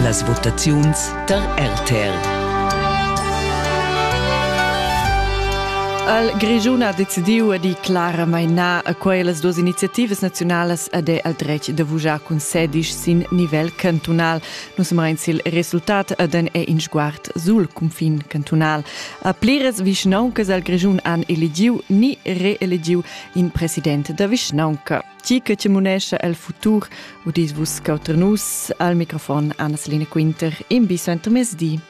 Las votaziuns tar RTL. Al Grischun ha decidiu di Clara Maina a quellas duas iniziativas naziunalas ad è al dretg da vugiar cun sedisch sin nivel cantunal. Nus amain sil resultat ad en è in sguard sul cunfin cantunal. A pliras vischnauncas al Grischun han eligiu ni reeligiu in president da vischnaunca. Ti che ti munescha el futur, udis vus cauter nus al microfon Anna-Celine Quinter in bi suentermezdi.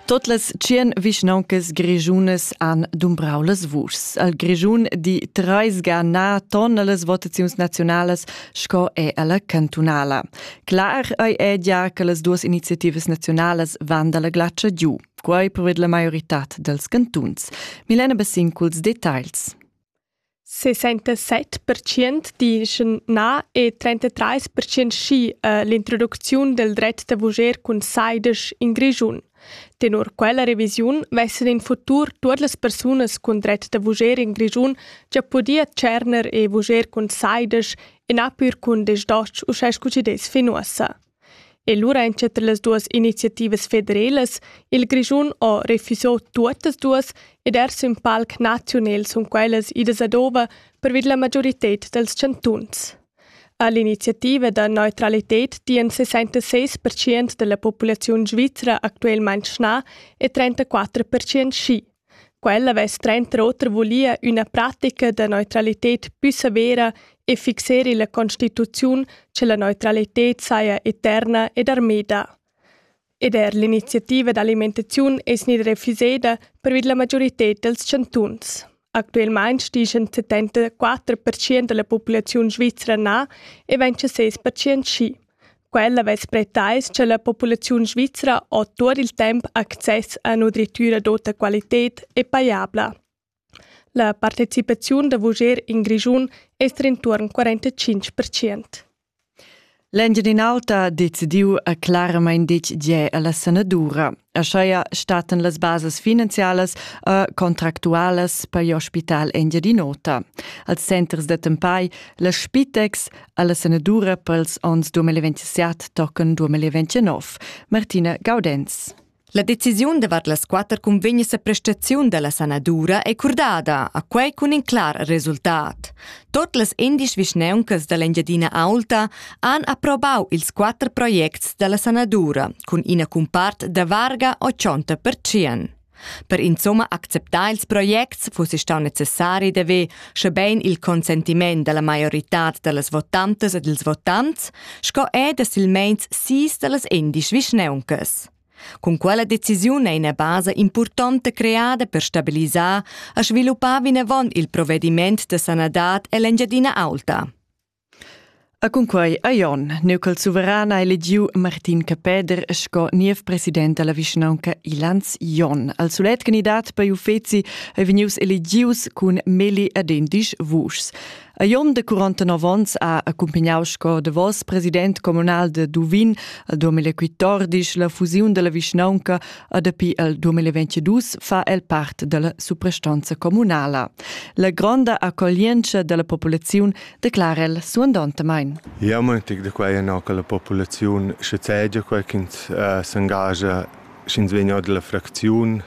Tot las tschien vischnauncas grischunas han dumbrau las vuschs. Al Grischun di treis ga na ton las votaziuns nazionalas sco è alla cantunala. Clar ei edia che las duas iniziativas naziunalas van dalla glatscha giu, quei preved la maioritad dels cantuns. Milena Bassin culs detagls. 67% dicono na e 33% sì uh, l'introduzione del dret da voger cun saides in Grischun. Tenor quella revisiun vessen in futur tuot las persunas cun dret da vuger in Grischun già podia tscherner e vuger cun saides e napir cun desdosch uschè scu chi dess fin uossa. E lura entschetter las duas iniziativas federelas, il Grischun ho refüso tuottas duas ed ers ün palc naziunel sun quellas idas ad ova per vid la magiorited dals chantuns. A l'iniziativa da neutralited dian 66 pertschient da la populaziun svizra actualmain schnà e 34 pertschient schi. Quella avess tranter oter vulia üna pratica da neutralited pü severa e fixer illa constituziun cha la neutralited saja eterna ed armeda. ed er l'iniziativa d'alimentaziun es gnida refuseda pervi la majorità dels chantuns. Actualmain stichen 74% da la populaziun svizra na e 26% schi. Quella vess pretais cha la populaziun svizra ho tuot il temp access a nutritüra d'ota qualited e pajabla. La partecipaziun da vuger in Grischun es d'intuorn quarantacinch percient. L'Engiadin'Alta ha decidiu a claramain ditg gie alla sanadura. Ascheia stattan las basas finanzialas e contractualas per l'ospital Engiadin'Ota. Als centers da tempai la Spitex alla sanadura pels ons 2027 tocken 2029. Martina Gaudenz. La decisiun davart las quatter cunvegnas a prestaziun da la sanadura è curdada, a quai cun in clar resultat. Tot las endisch vischneuncas da l'Engiadina Aulta han approbau ils quatter projects da la sanadura cun ina cumpart da varga 80%. Per insomma acceptar ils projects fuss stau necessari d'haver, schebein il consentiment dalla maioritad dallas votantas ed ils votants, sco er da silmeins sis dallas endisch vischneuncas. Cun quella decisiun ei ina basa impurtonta creada per stabilisar e sviluppar vinavon il provediment da sanadad ell'Engiadina Aulta. E cunquei a Jon, neu col suveran ha elegiu Martin Capeder sco niev president dalla vischnaunca Ilans Jon. Al sulet candidat per uffeci ei vegnius elegius cun Meli ed endisch vuschs. A Jon de 49 onns ha accumpagnau sco davos president communal de Duvin al 2014 la fusiun della vischnaunca e dapi al 2022 fa el part della suprastanza communala. La gronda accoglienza della populaziun declara el suandontamain. Ja, mo tic de quai no che la populaziun sche segia quai ch'ins uh, s'engagia sch'ins vegn dalla fracziun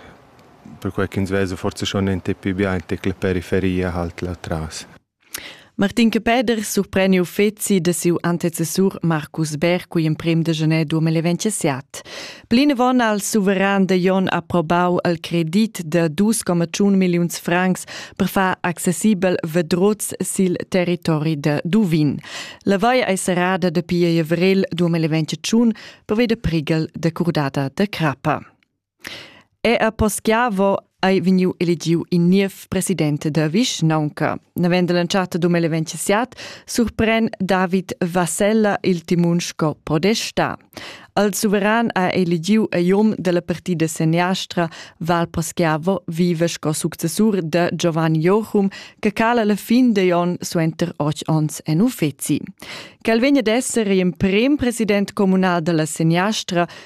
perquai ch'ins vesa forse schon ente più bien che la periferia halt là tras. Martin Peder surpreni uffeci da siu antecessur Marcus Berg cui emprem de gener 2027. Plinavon al suveran de Jon aprobau al credit de 2,1 milliuns francs per far accessibel vedrots sil territori de Duvin. La vai ei serrada de pia avrel 2021 per veder prigel de curdada de crappa. Era poschiavo ei vegniu elegiu in niev president da vischnaunca. Navend l'entschatta dum eventsiat surpren David Vassella il timun sco podesta. Al suveran ha elegiu ei um dalla partida seniastra Val Poschiavo vive sco successur da Giovanni Jochum che cala la fin degli onn suenter otg onns en uffeci. Quel vegn ad esser emprem president communal dalla seniastra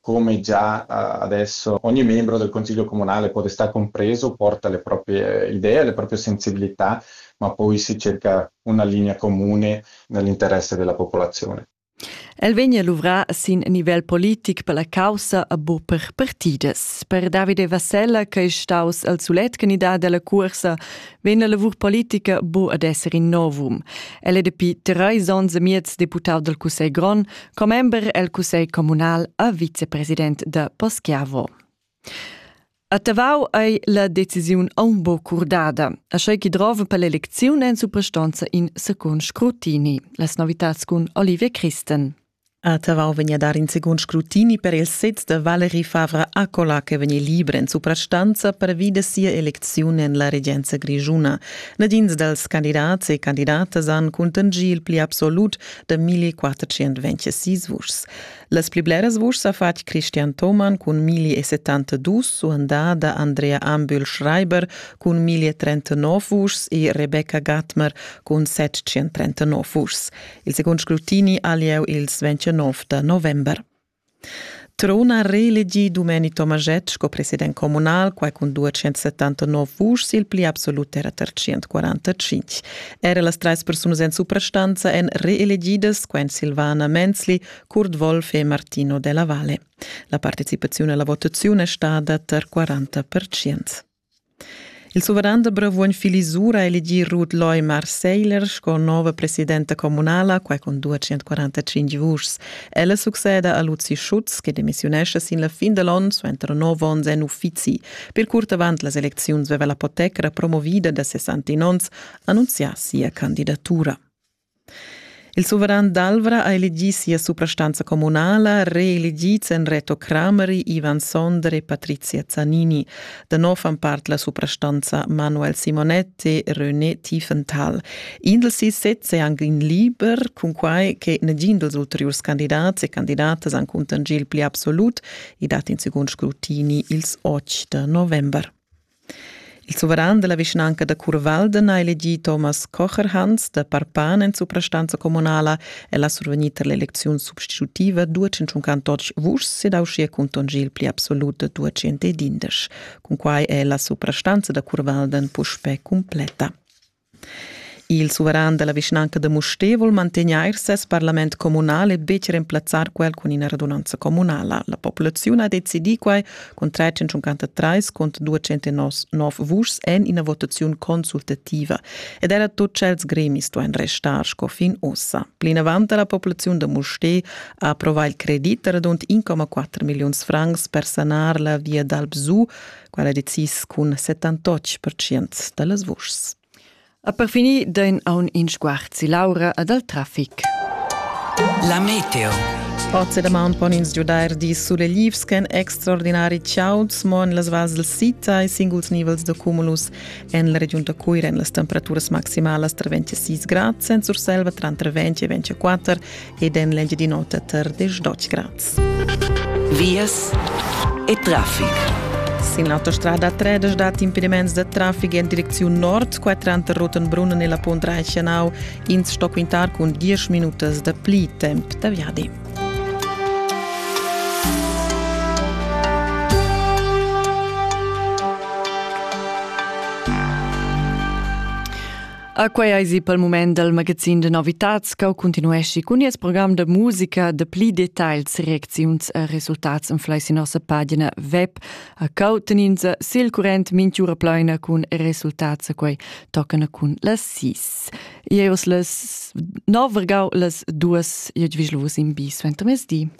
Come già adesso ogni membro del consiglio comunale può restare compreso, porta le proprie idee, le proprie sensibilità, ma poi si cerca una linea comune nell'interesse della popolazione. El vegn luvrà sin nivel politic per la caussa a bu per partidas. Per Davide Vassella, che è staus al sulet candidat della cursa, vegn la lavur politica bu ad esser in novum. El è dapi treis onns e miez deputau del Cussegl Grond, commember el cussegl communal e vicepresident da Poschiavo. A Tavau ei la decisiun aun bo curdada, a schei chi drova per l'elecziun en suprastonza in secund scrutini, las novitats cun Olivia Christen. A Tavau vegn a dar in secund scrutini per il sez da Valerie Favre Accola che vegn liber en suprastanza pervi da sia eleziun en la regenza grigiuna. Nadins dals candidats e candidatas han contingì il pli absolut da 1426 vuschs. Las pli bleras vuschs ha fatg Christian Thomann cun 1072, suandà da Andrea Ambühl Schreiber cun 1039 vuschs e Rebecca Gatmer cun 739 vuschs. Il secund scrutini ha lieu ils 29 da november. Trun ha reelegì Dumeni Tomaschett sco president communal, quai cun 279 vuschs, il pli absolut era tar 145. Era las trais persunas en suprastanza èn reelegidas, quai èn Silvana Menzli, Kurt Wolf e Martino Della Valle. La participaziun alla votaziun è stada tar 40%. Il suveran da Bravuogn Fili Zura ha elegì Ruth Leumar Seiler sco nova presidenta communala, quai cun 245 vuschs. Ella succeda a Luzi Schutz che demissiunescha sin la fin da l'onn suenter nov onns en uffizi. Per curt avant las elecziuns veva la poteca promovida da 61 onns annunzià sia candidatura. Il suveran d'Alvra ha elegì sia suprastanza communala, reelegids èn Reto Crameri, Ivan Sonder e Patrizia Zanini. Da nov fan part la suprastanza Manuel Simonetti e René Tiefenthal. In dals sis sezs è anche in liber, cunquai che negin dals ulteriurs candidats e candidatas han cuntangi il pli absolut e dat in secund scrutini ils 8 da november. Il suveran della vischnanca da Curvalden ha elegì Thomas Kocherhans da Parpan en suprastanza communala. El ha survegnì tar l'elecziun substitutiva 258 vuschs ed ha uschia contagià il pli absolut da 211. Cun quai è la suprastanza da Curvalden puspè completa. Il suveran dalla vischnanca da Mustér vul mantegnair ses parlament communal e betg remplazzar quel cun ina radunanza communala. La populaziun ha decidì quai cun 353 cont 209 vuschs en ina votaziun consultativa. Ed era tut tschels gremis duain restar sco fin ossa. Plinavant la populaziun da Mustér ha approvà il credit radund 1,4 milliuns francs per sanar la via dal Bsu quella decis cun 78% da las vuschs. A per finir dain aun in sguard si Laura e dal trafic. La meteo. Oz da man pon ins giudair di sulelivs ch'en extraordinari chauds mo en las vals del Sita e singuls nivels da cumulus en la regiun da Cuira en las temperaturas maximalas tra 26 grad, senza Urselva tranter 20 e 24 ed en l'Engiadin'Ota tar Desdotsch Graz. Vias e traffic. Sin l'autostrada 3 dat impediments da traffic en direcziun nord, qua tranter Rotenbrunnen e la Pont Reichenau, ins sto quintar cun 10 minutas da pli temp da viadi. A quei eisi pel mument dal magazin de novitats che continuesci cun nies program de musica de pli details, reacziuns e resultats en fleisi nossa pagina web a cauteninza sil current minchiura pleina cun resultats a quei toccana cun las sis. Ieus las nov vergau las duas iedvislus in bi suentermesdi.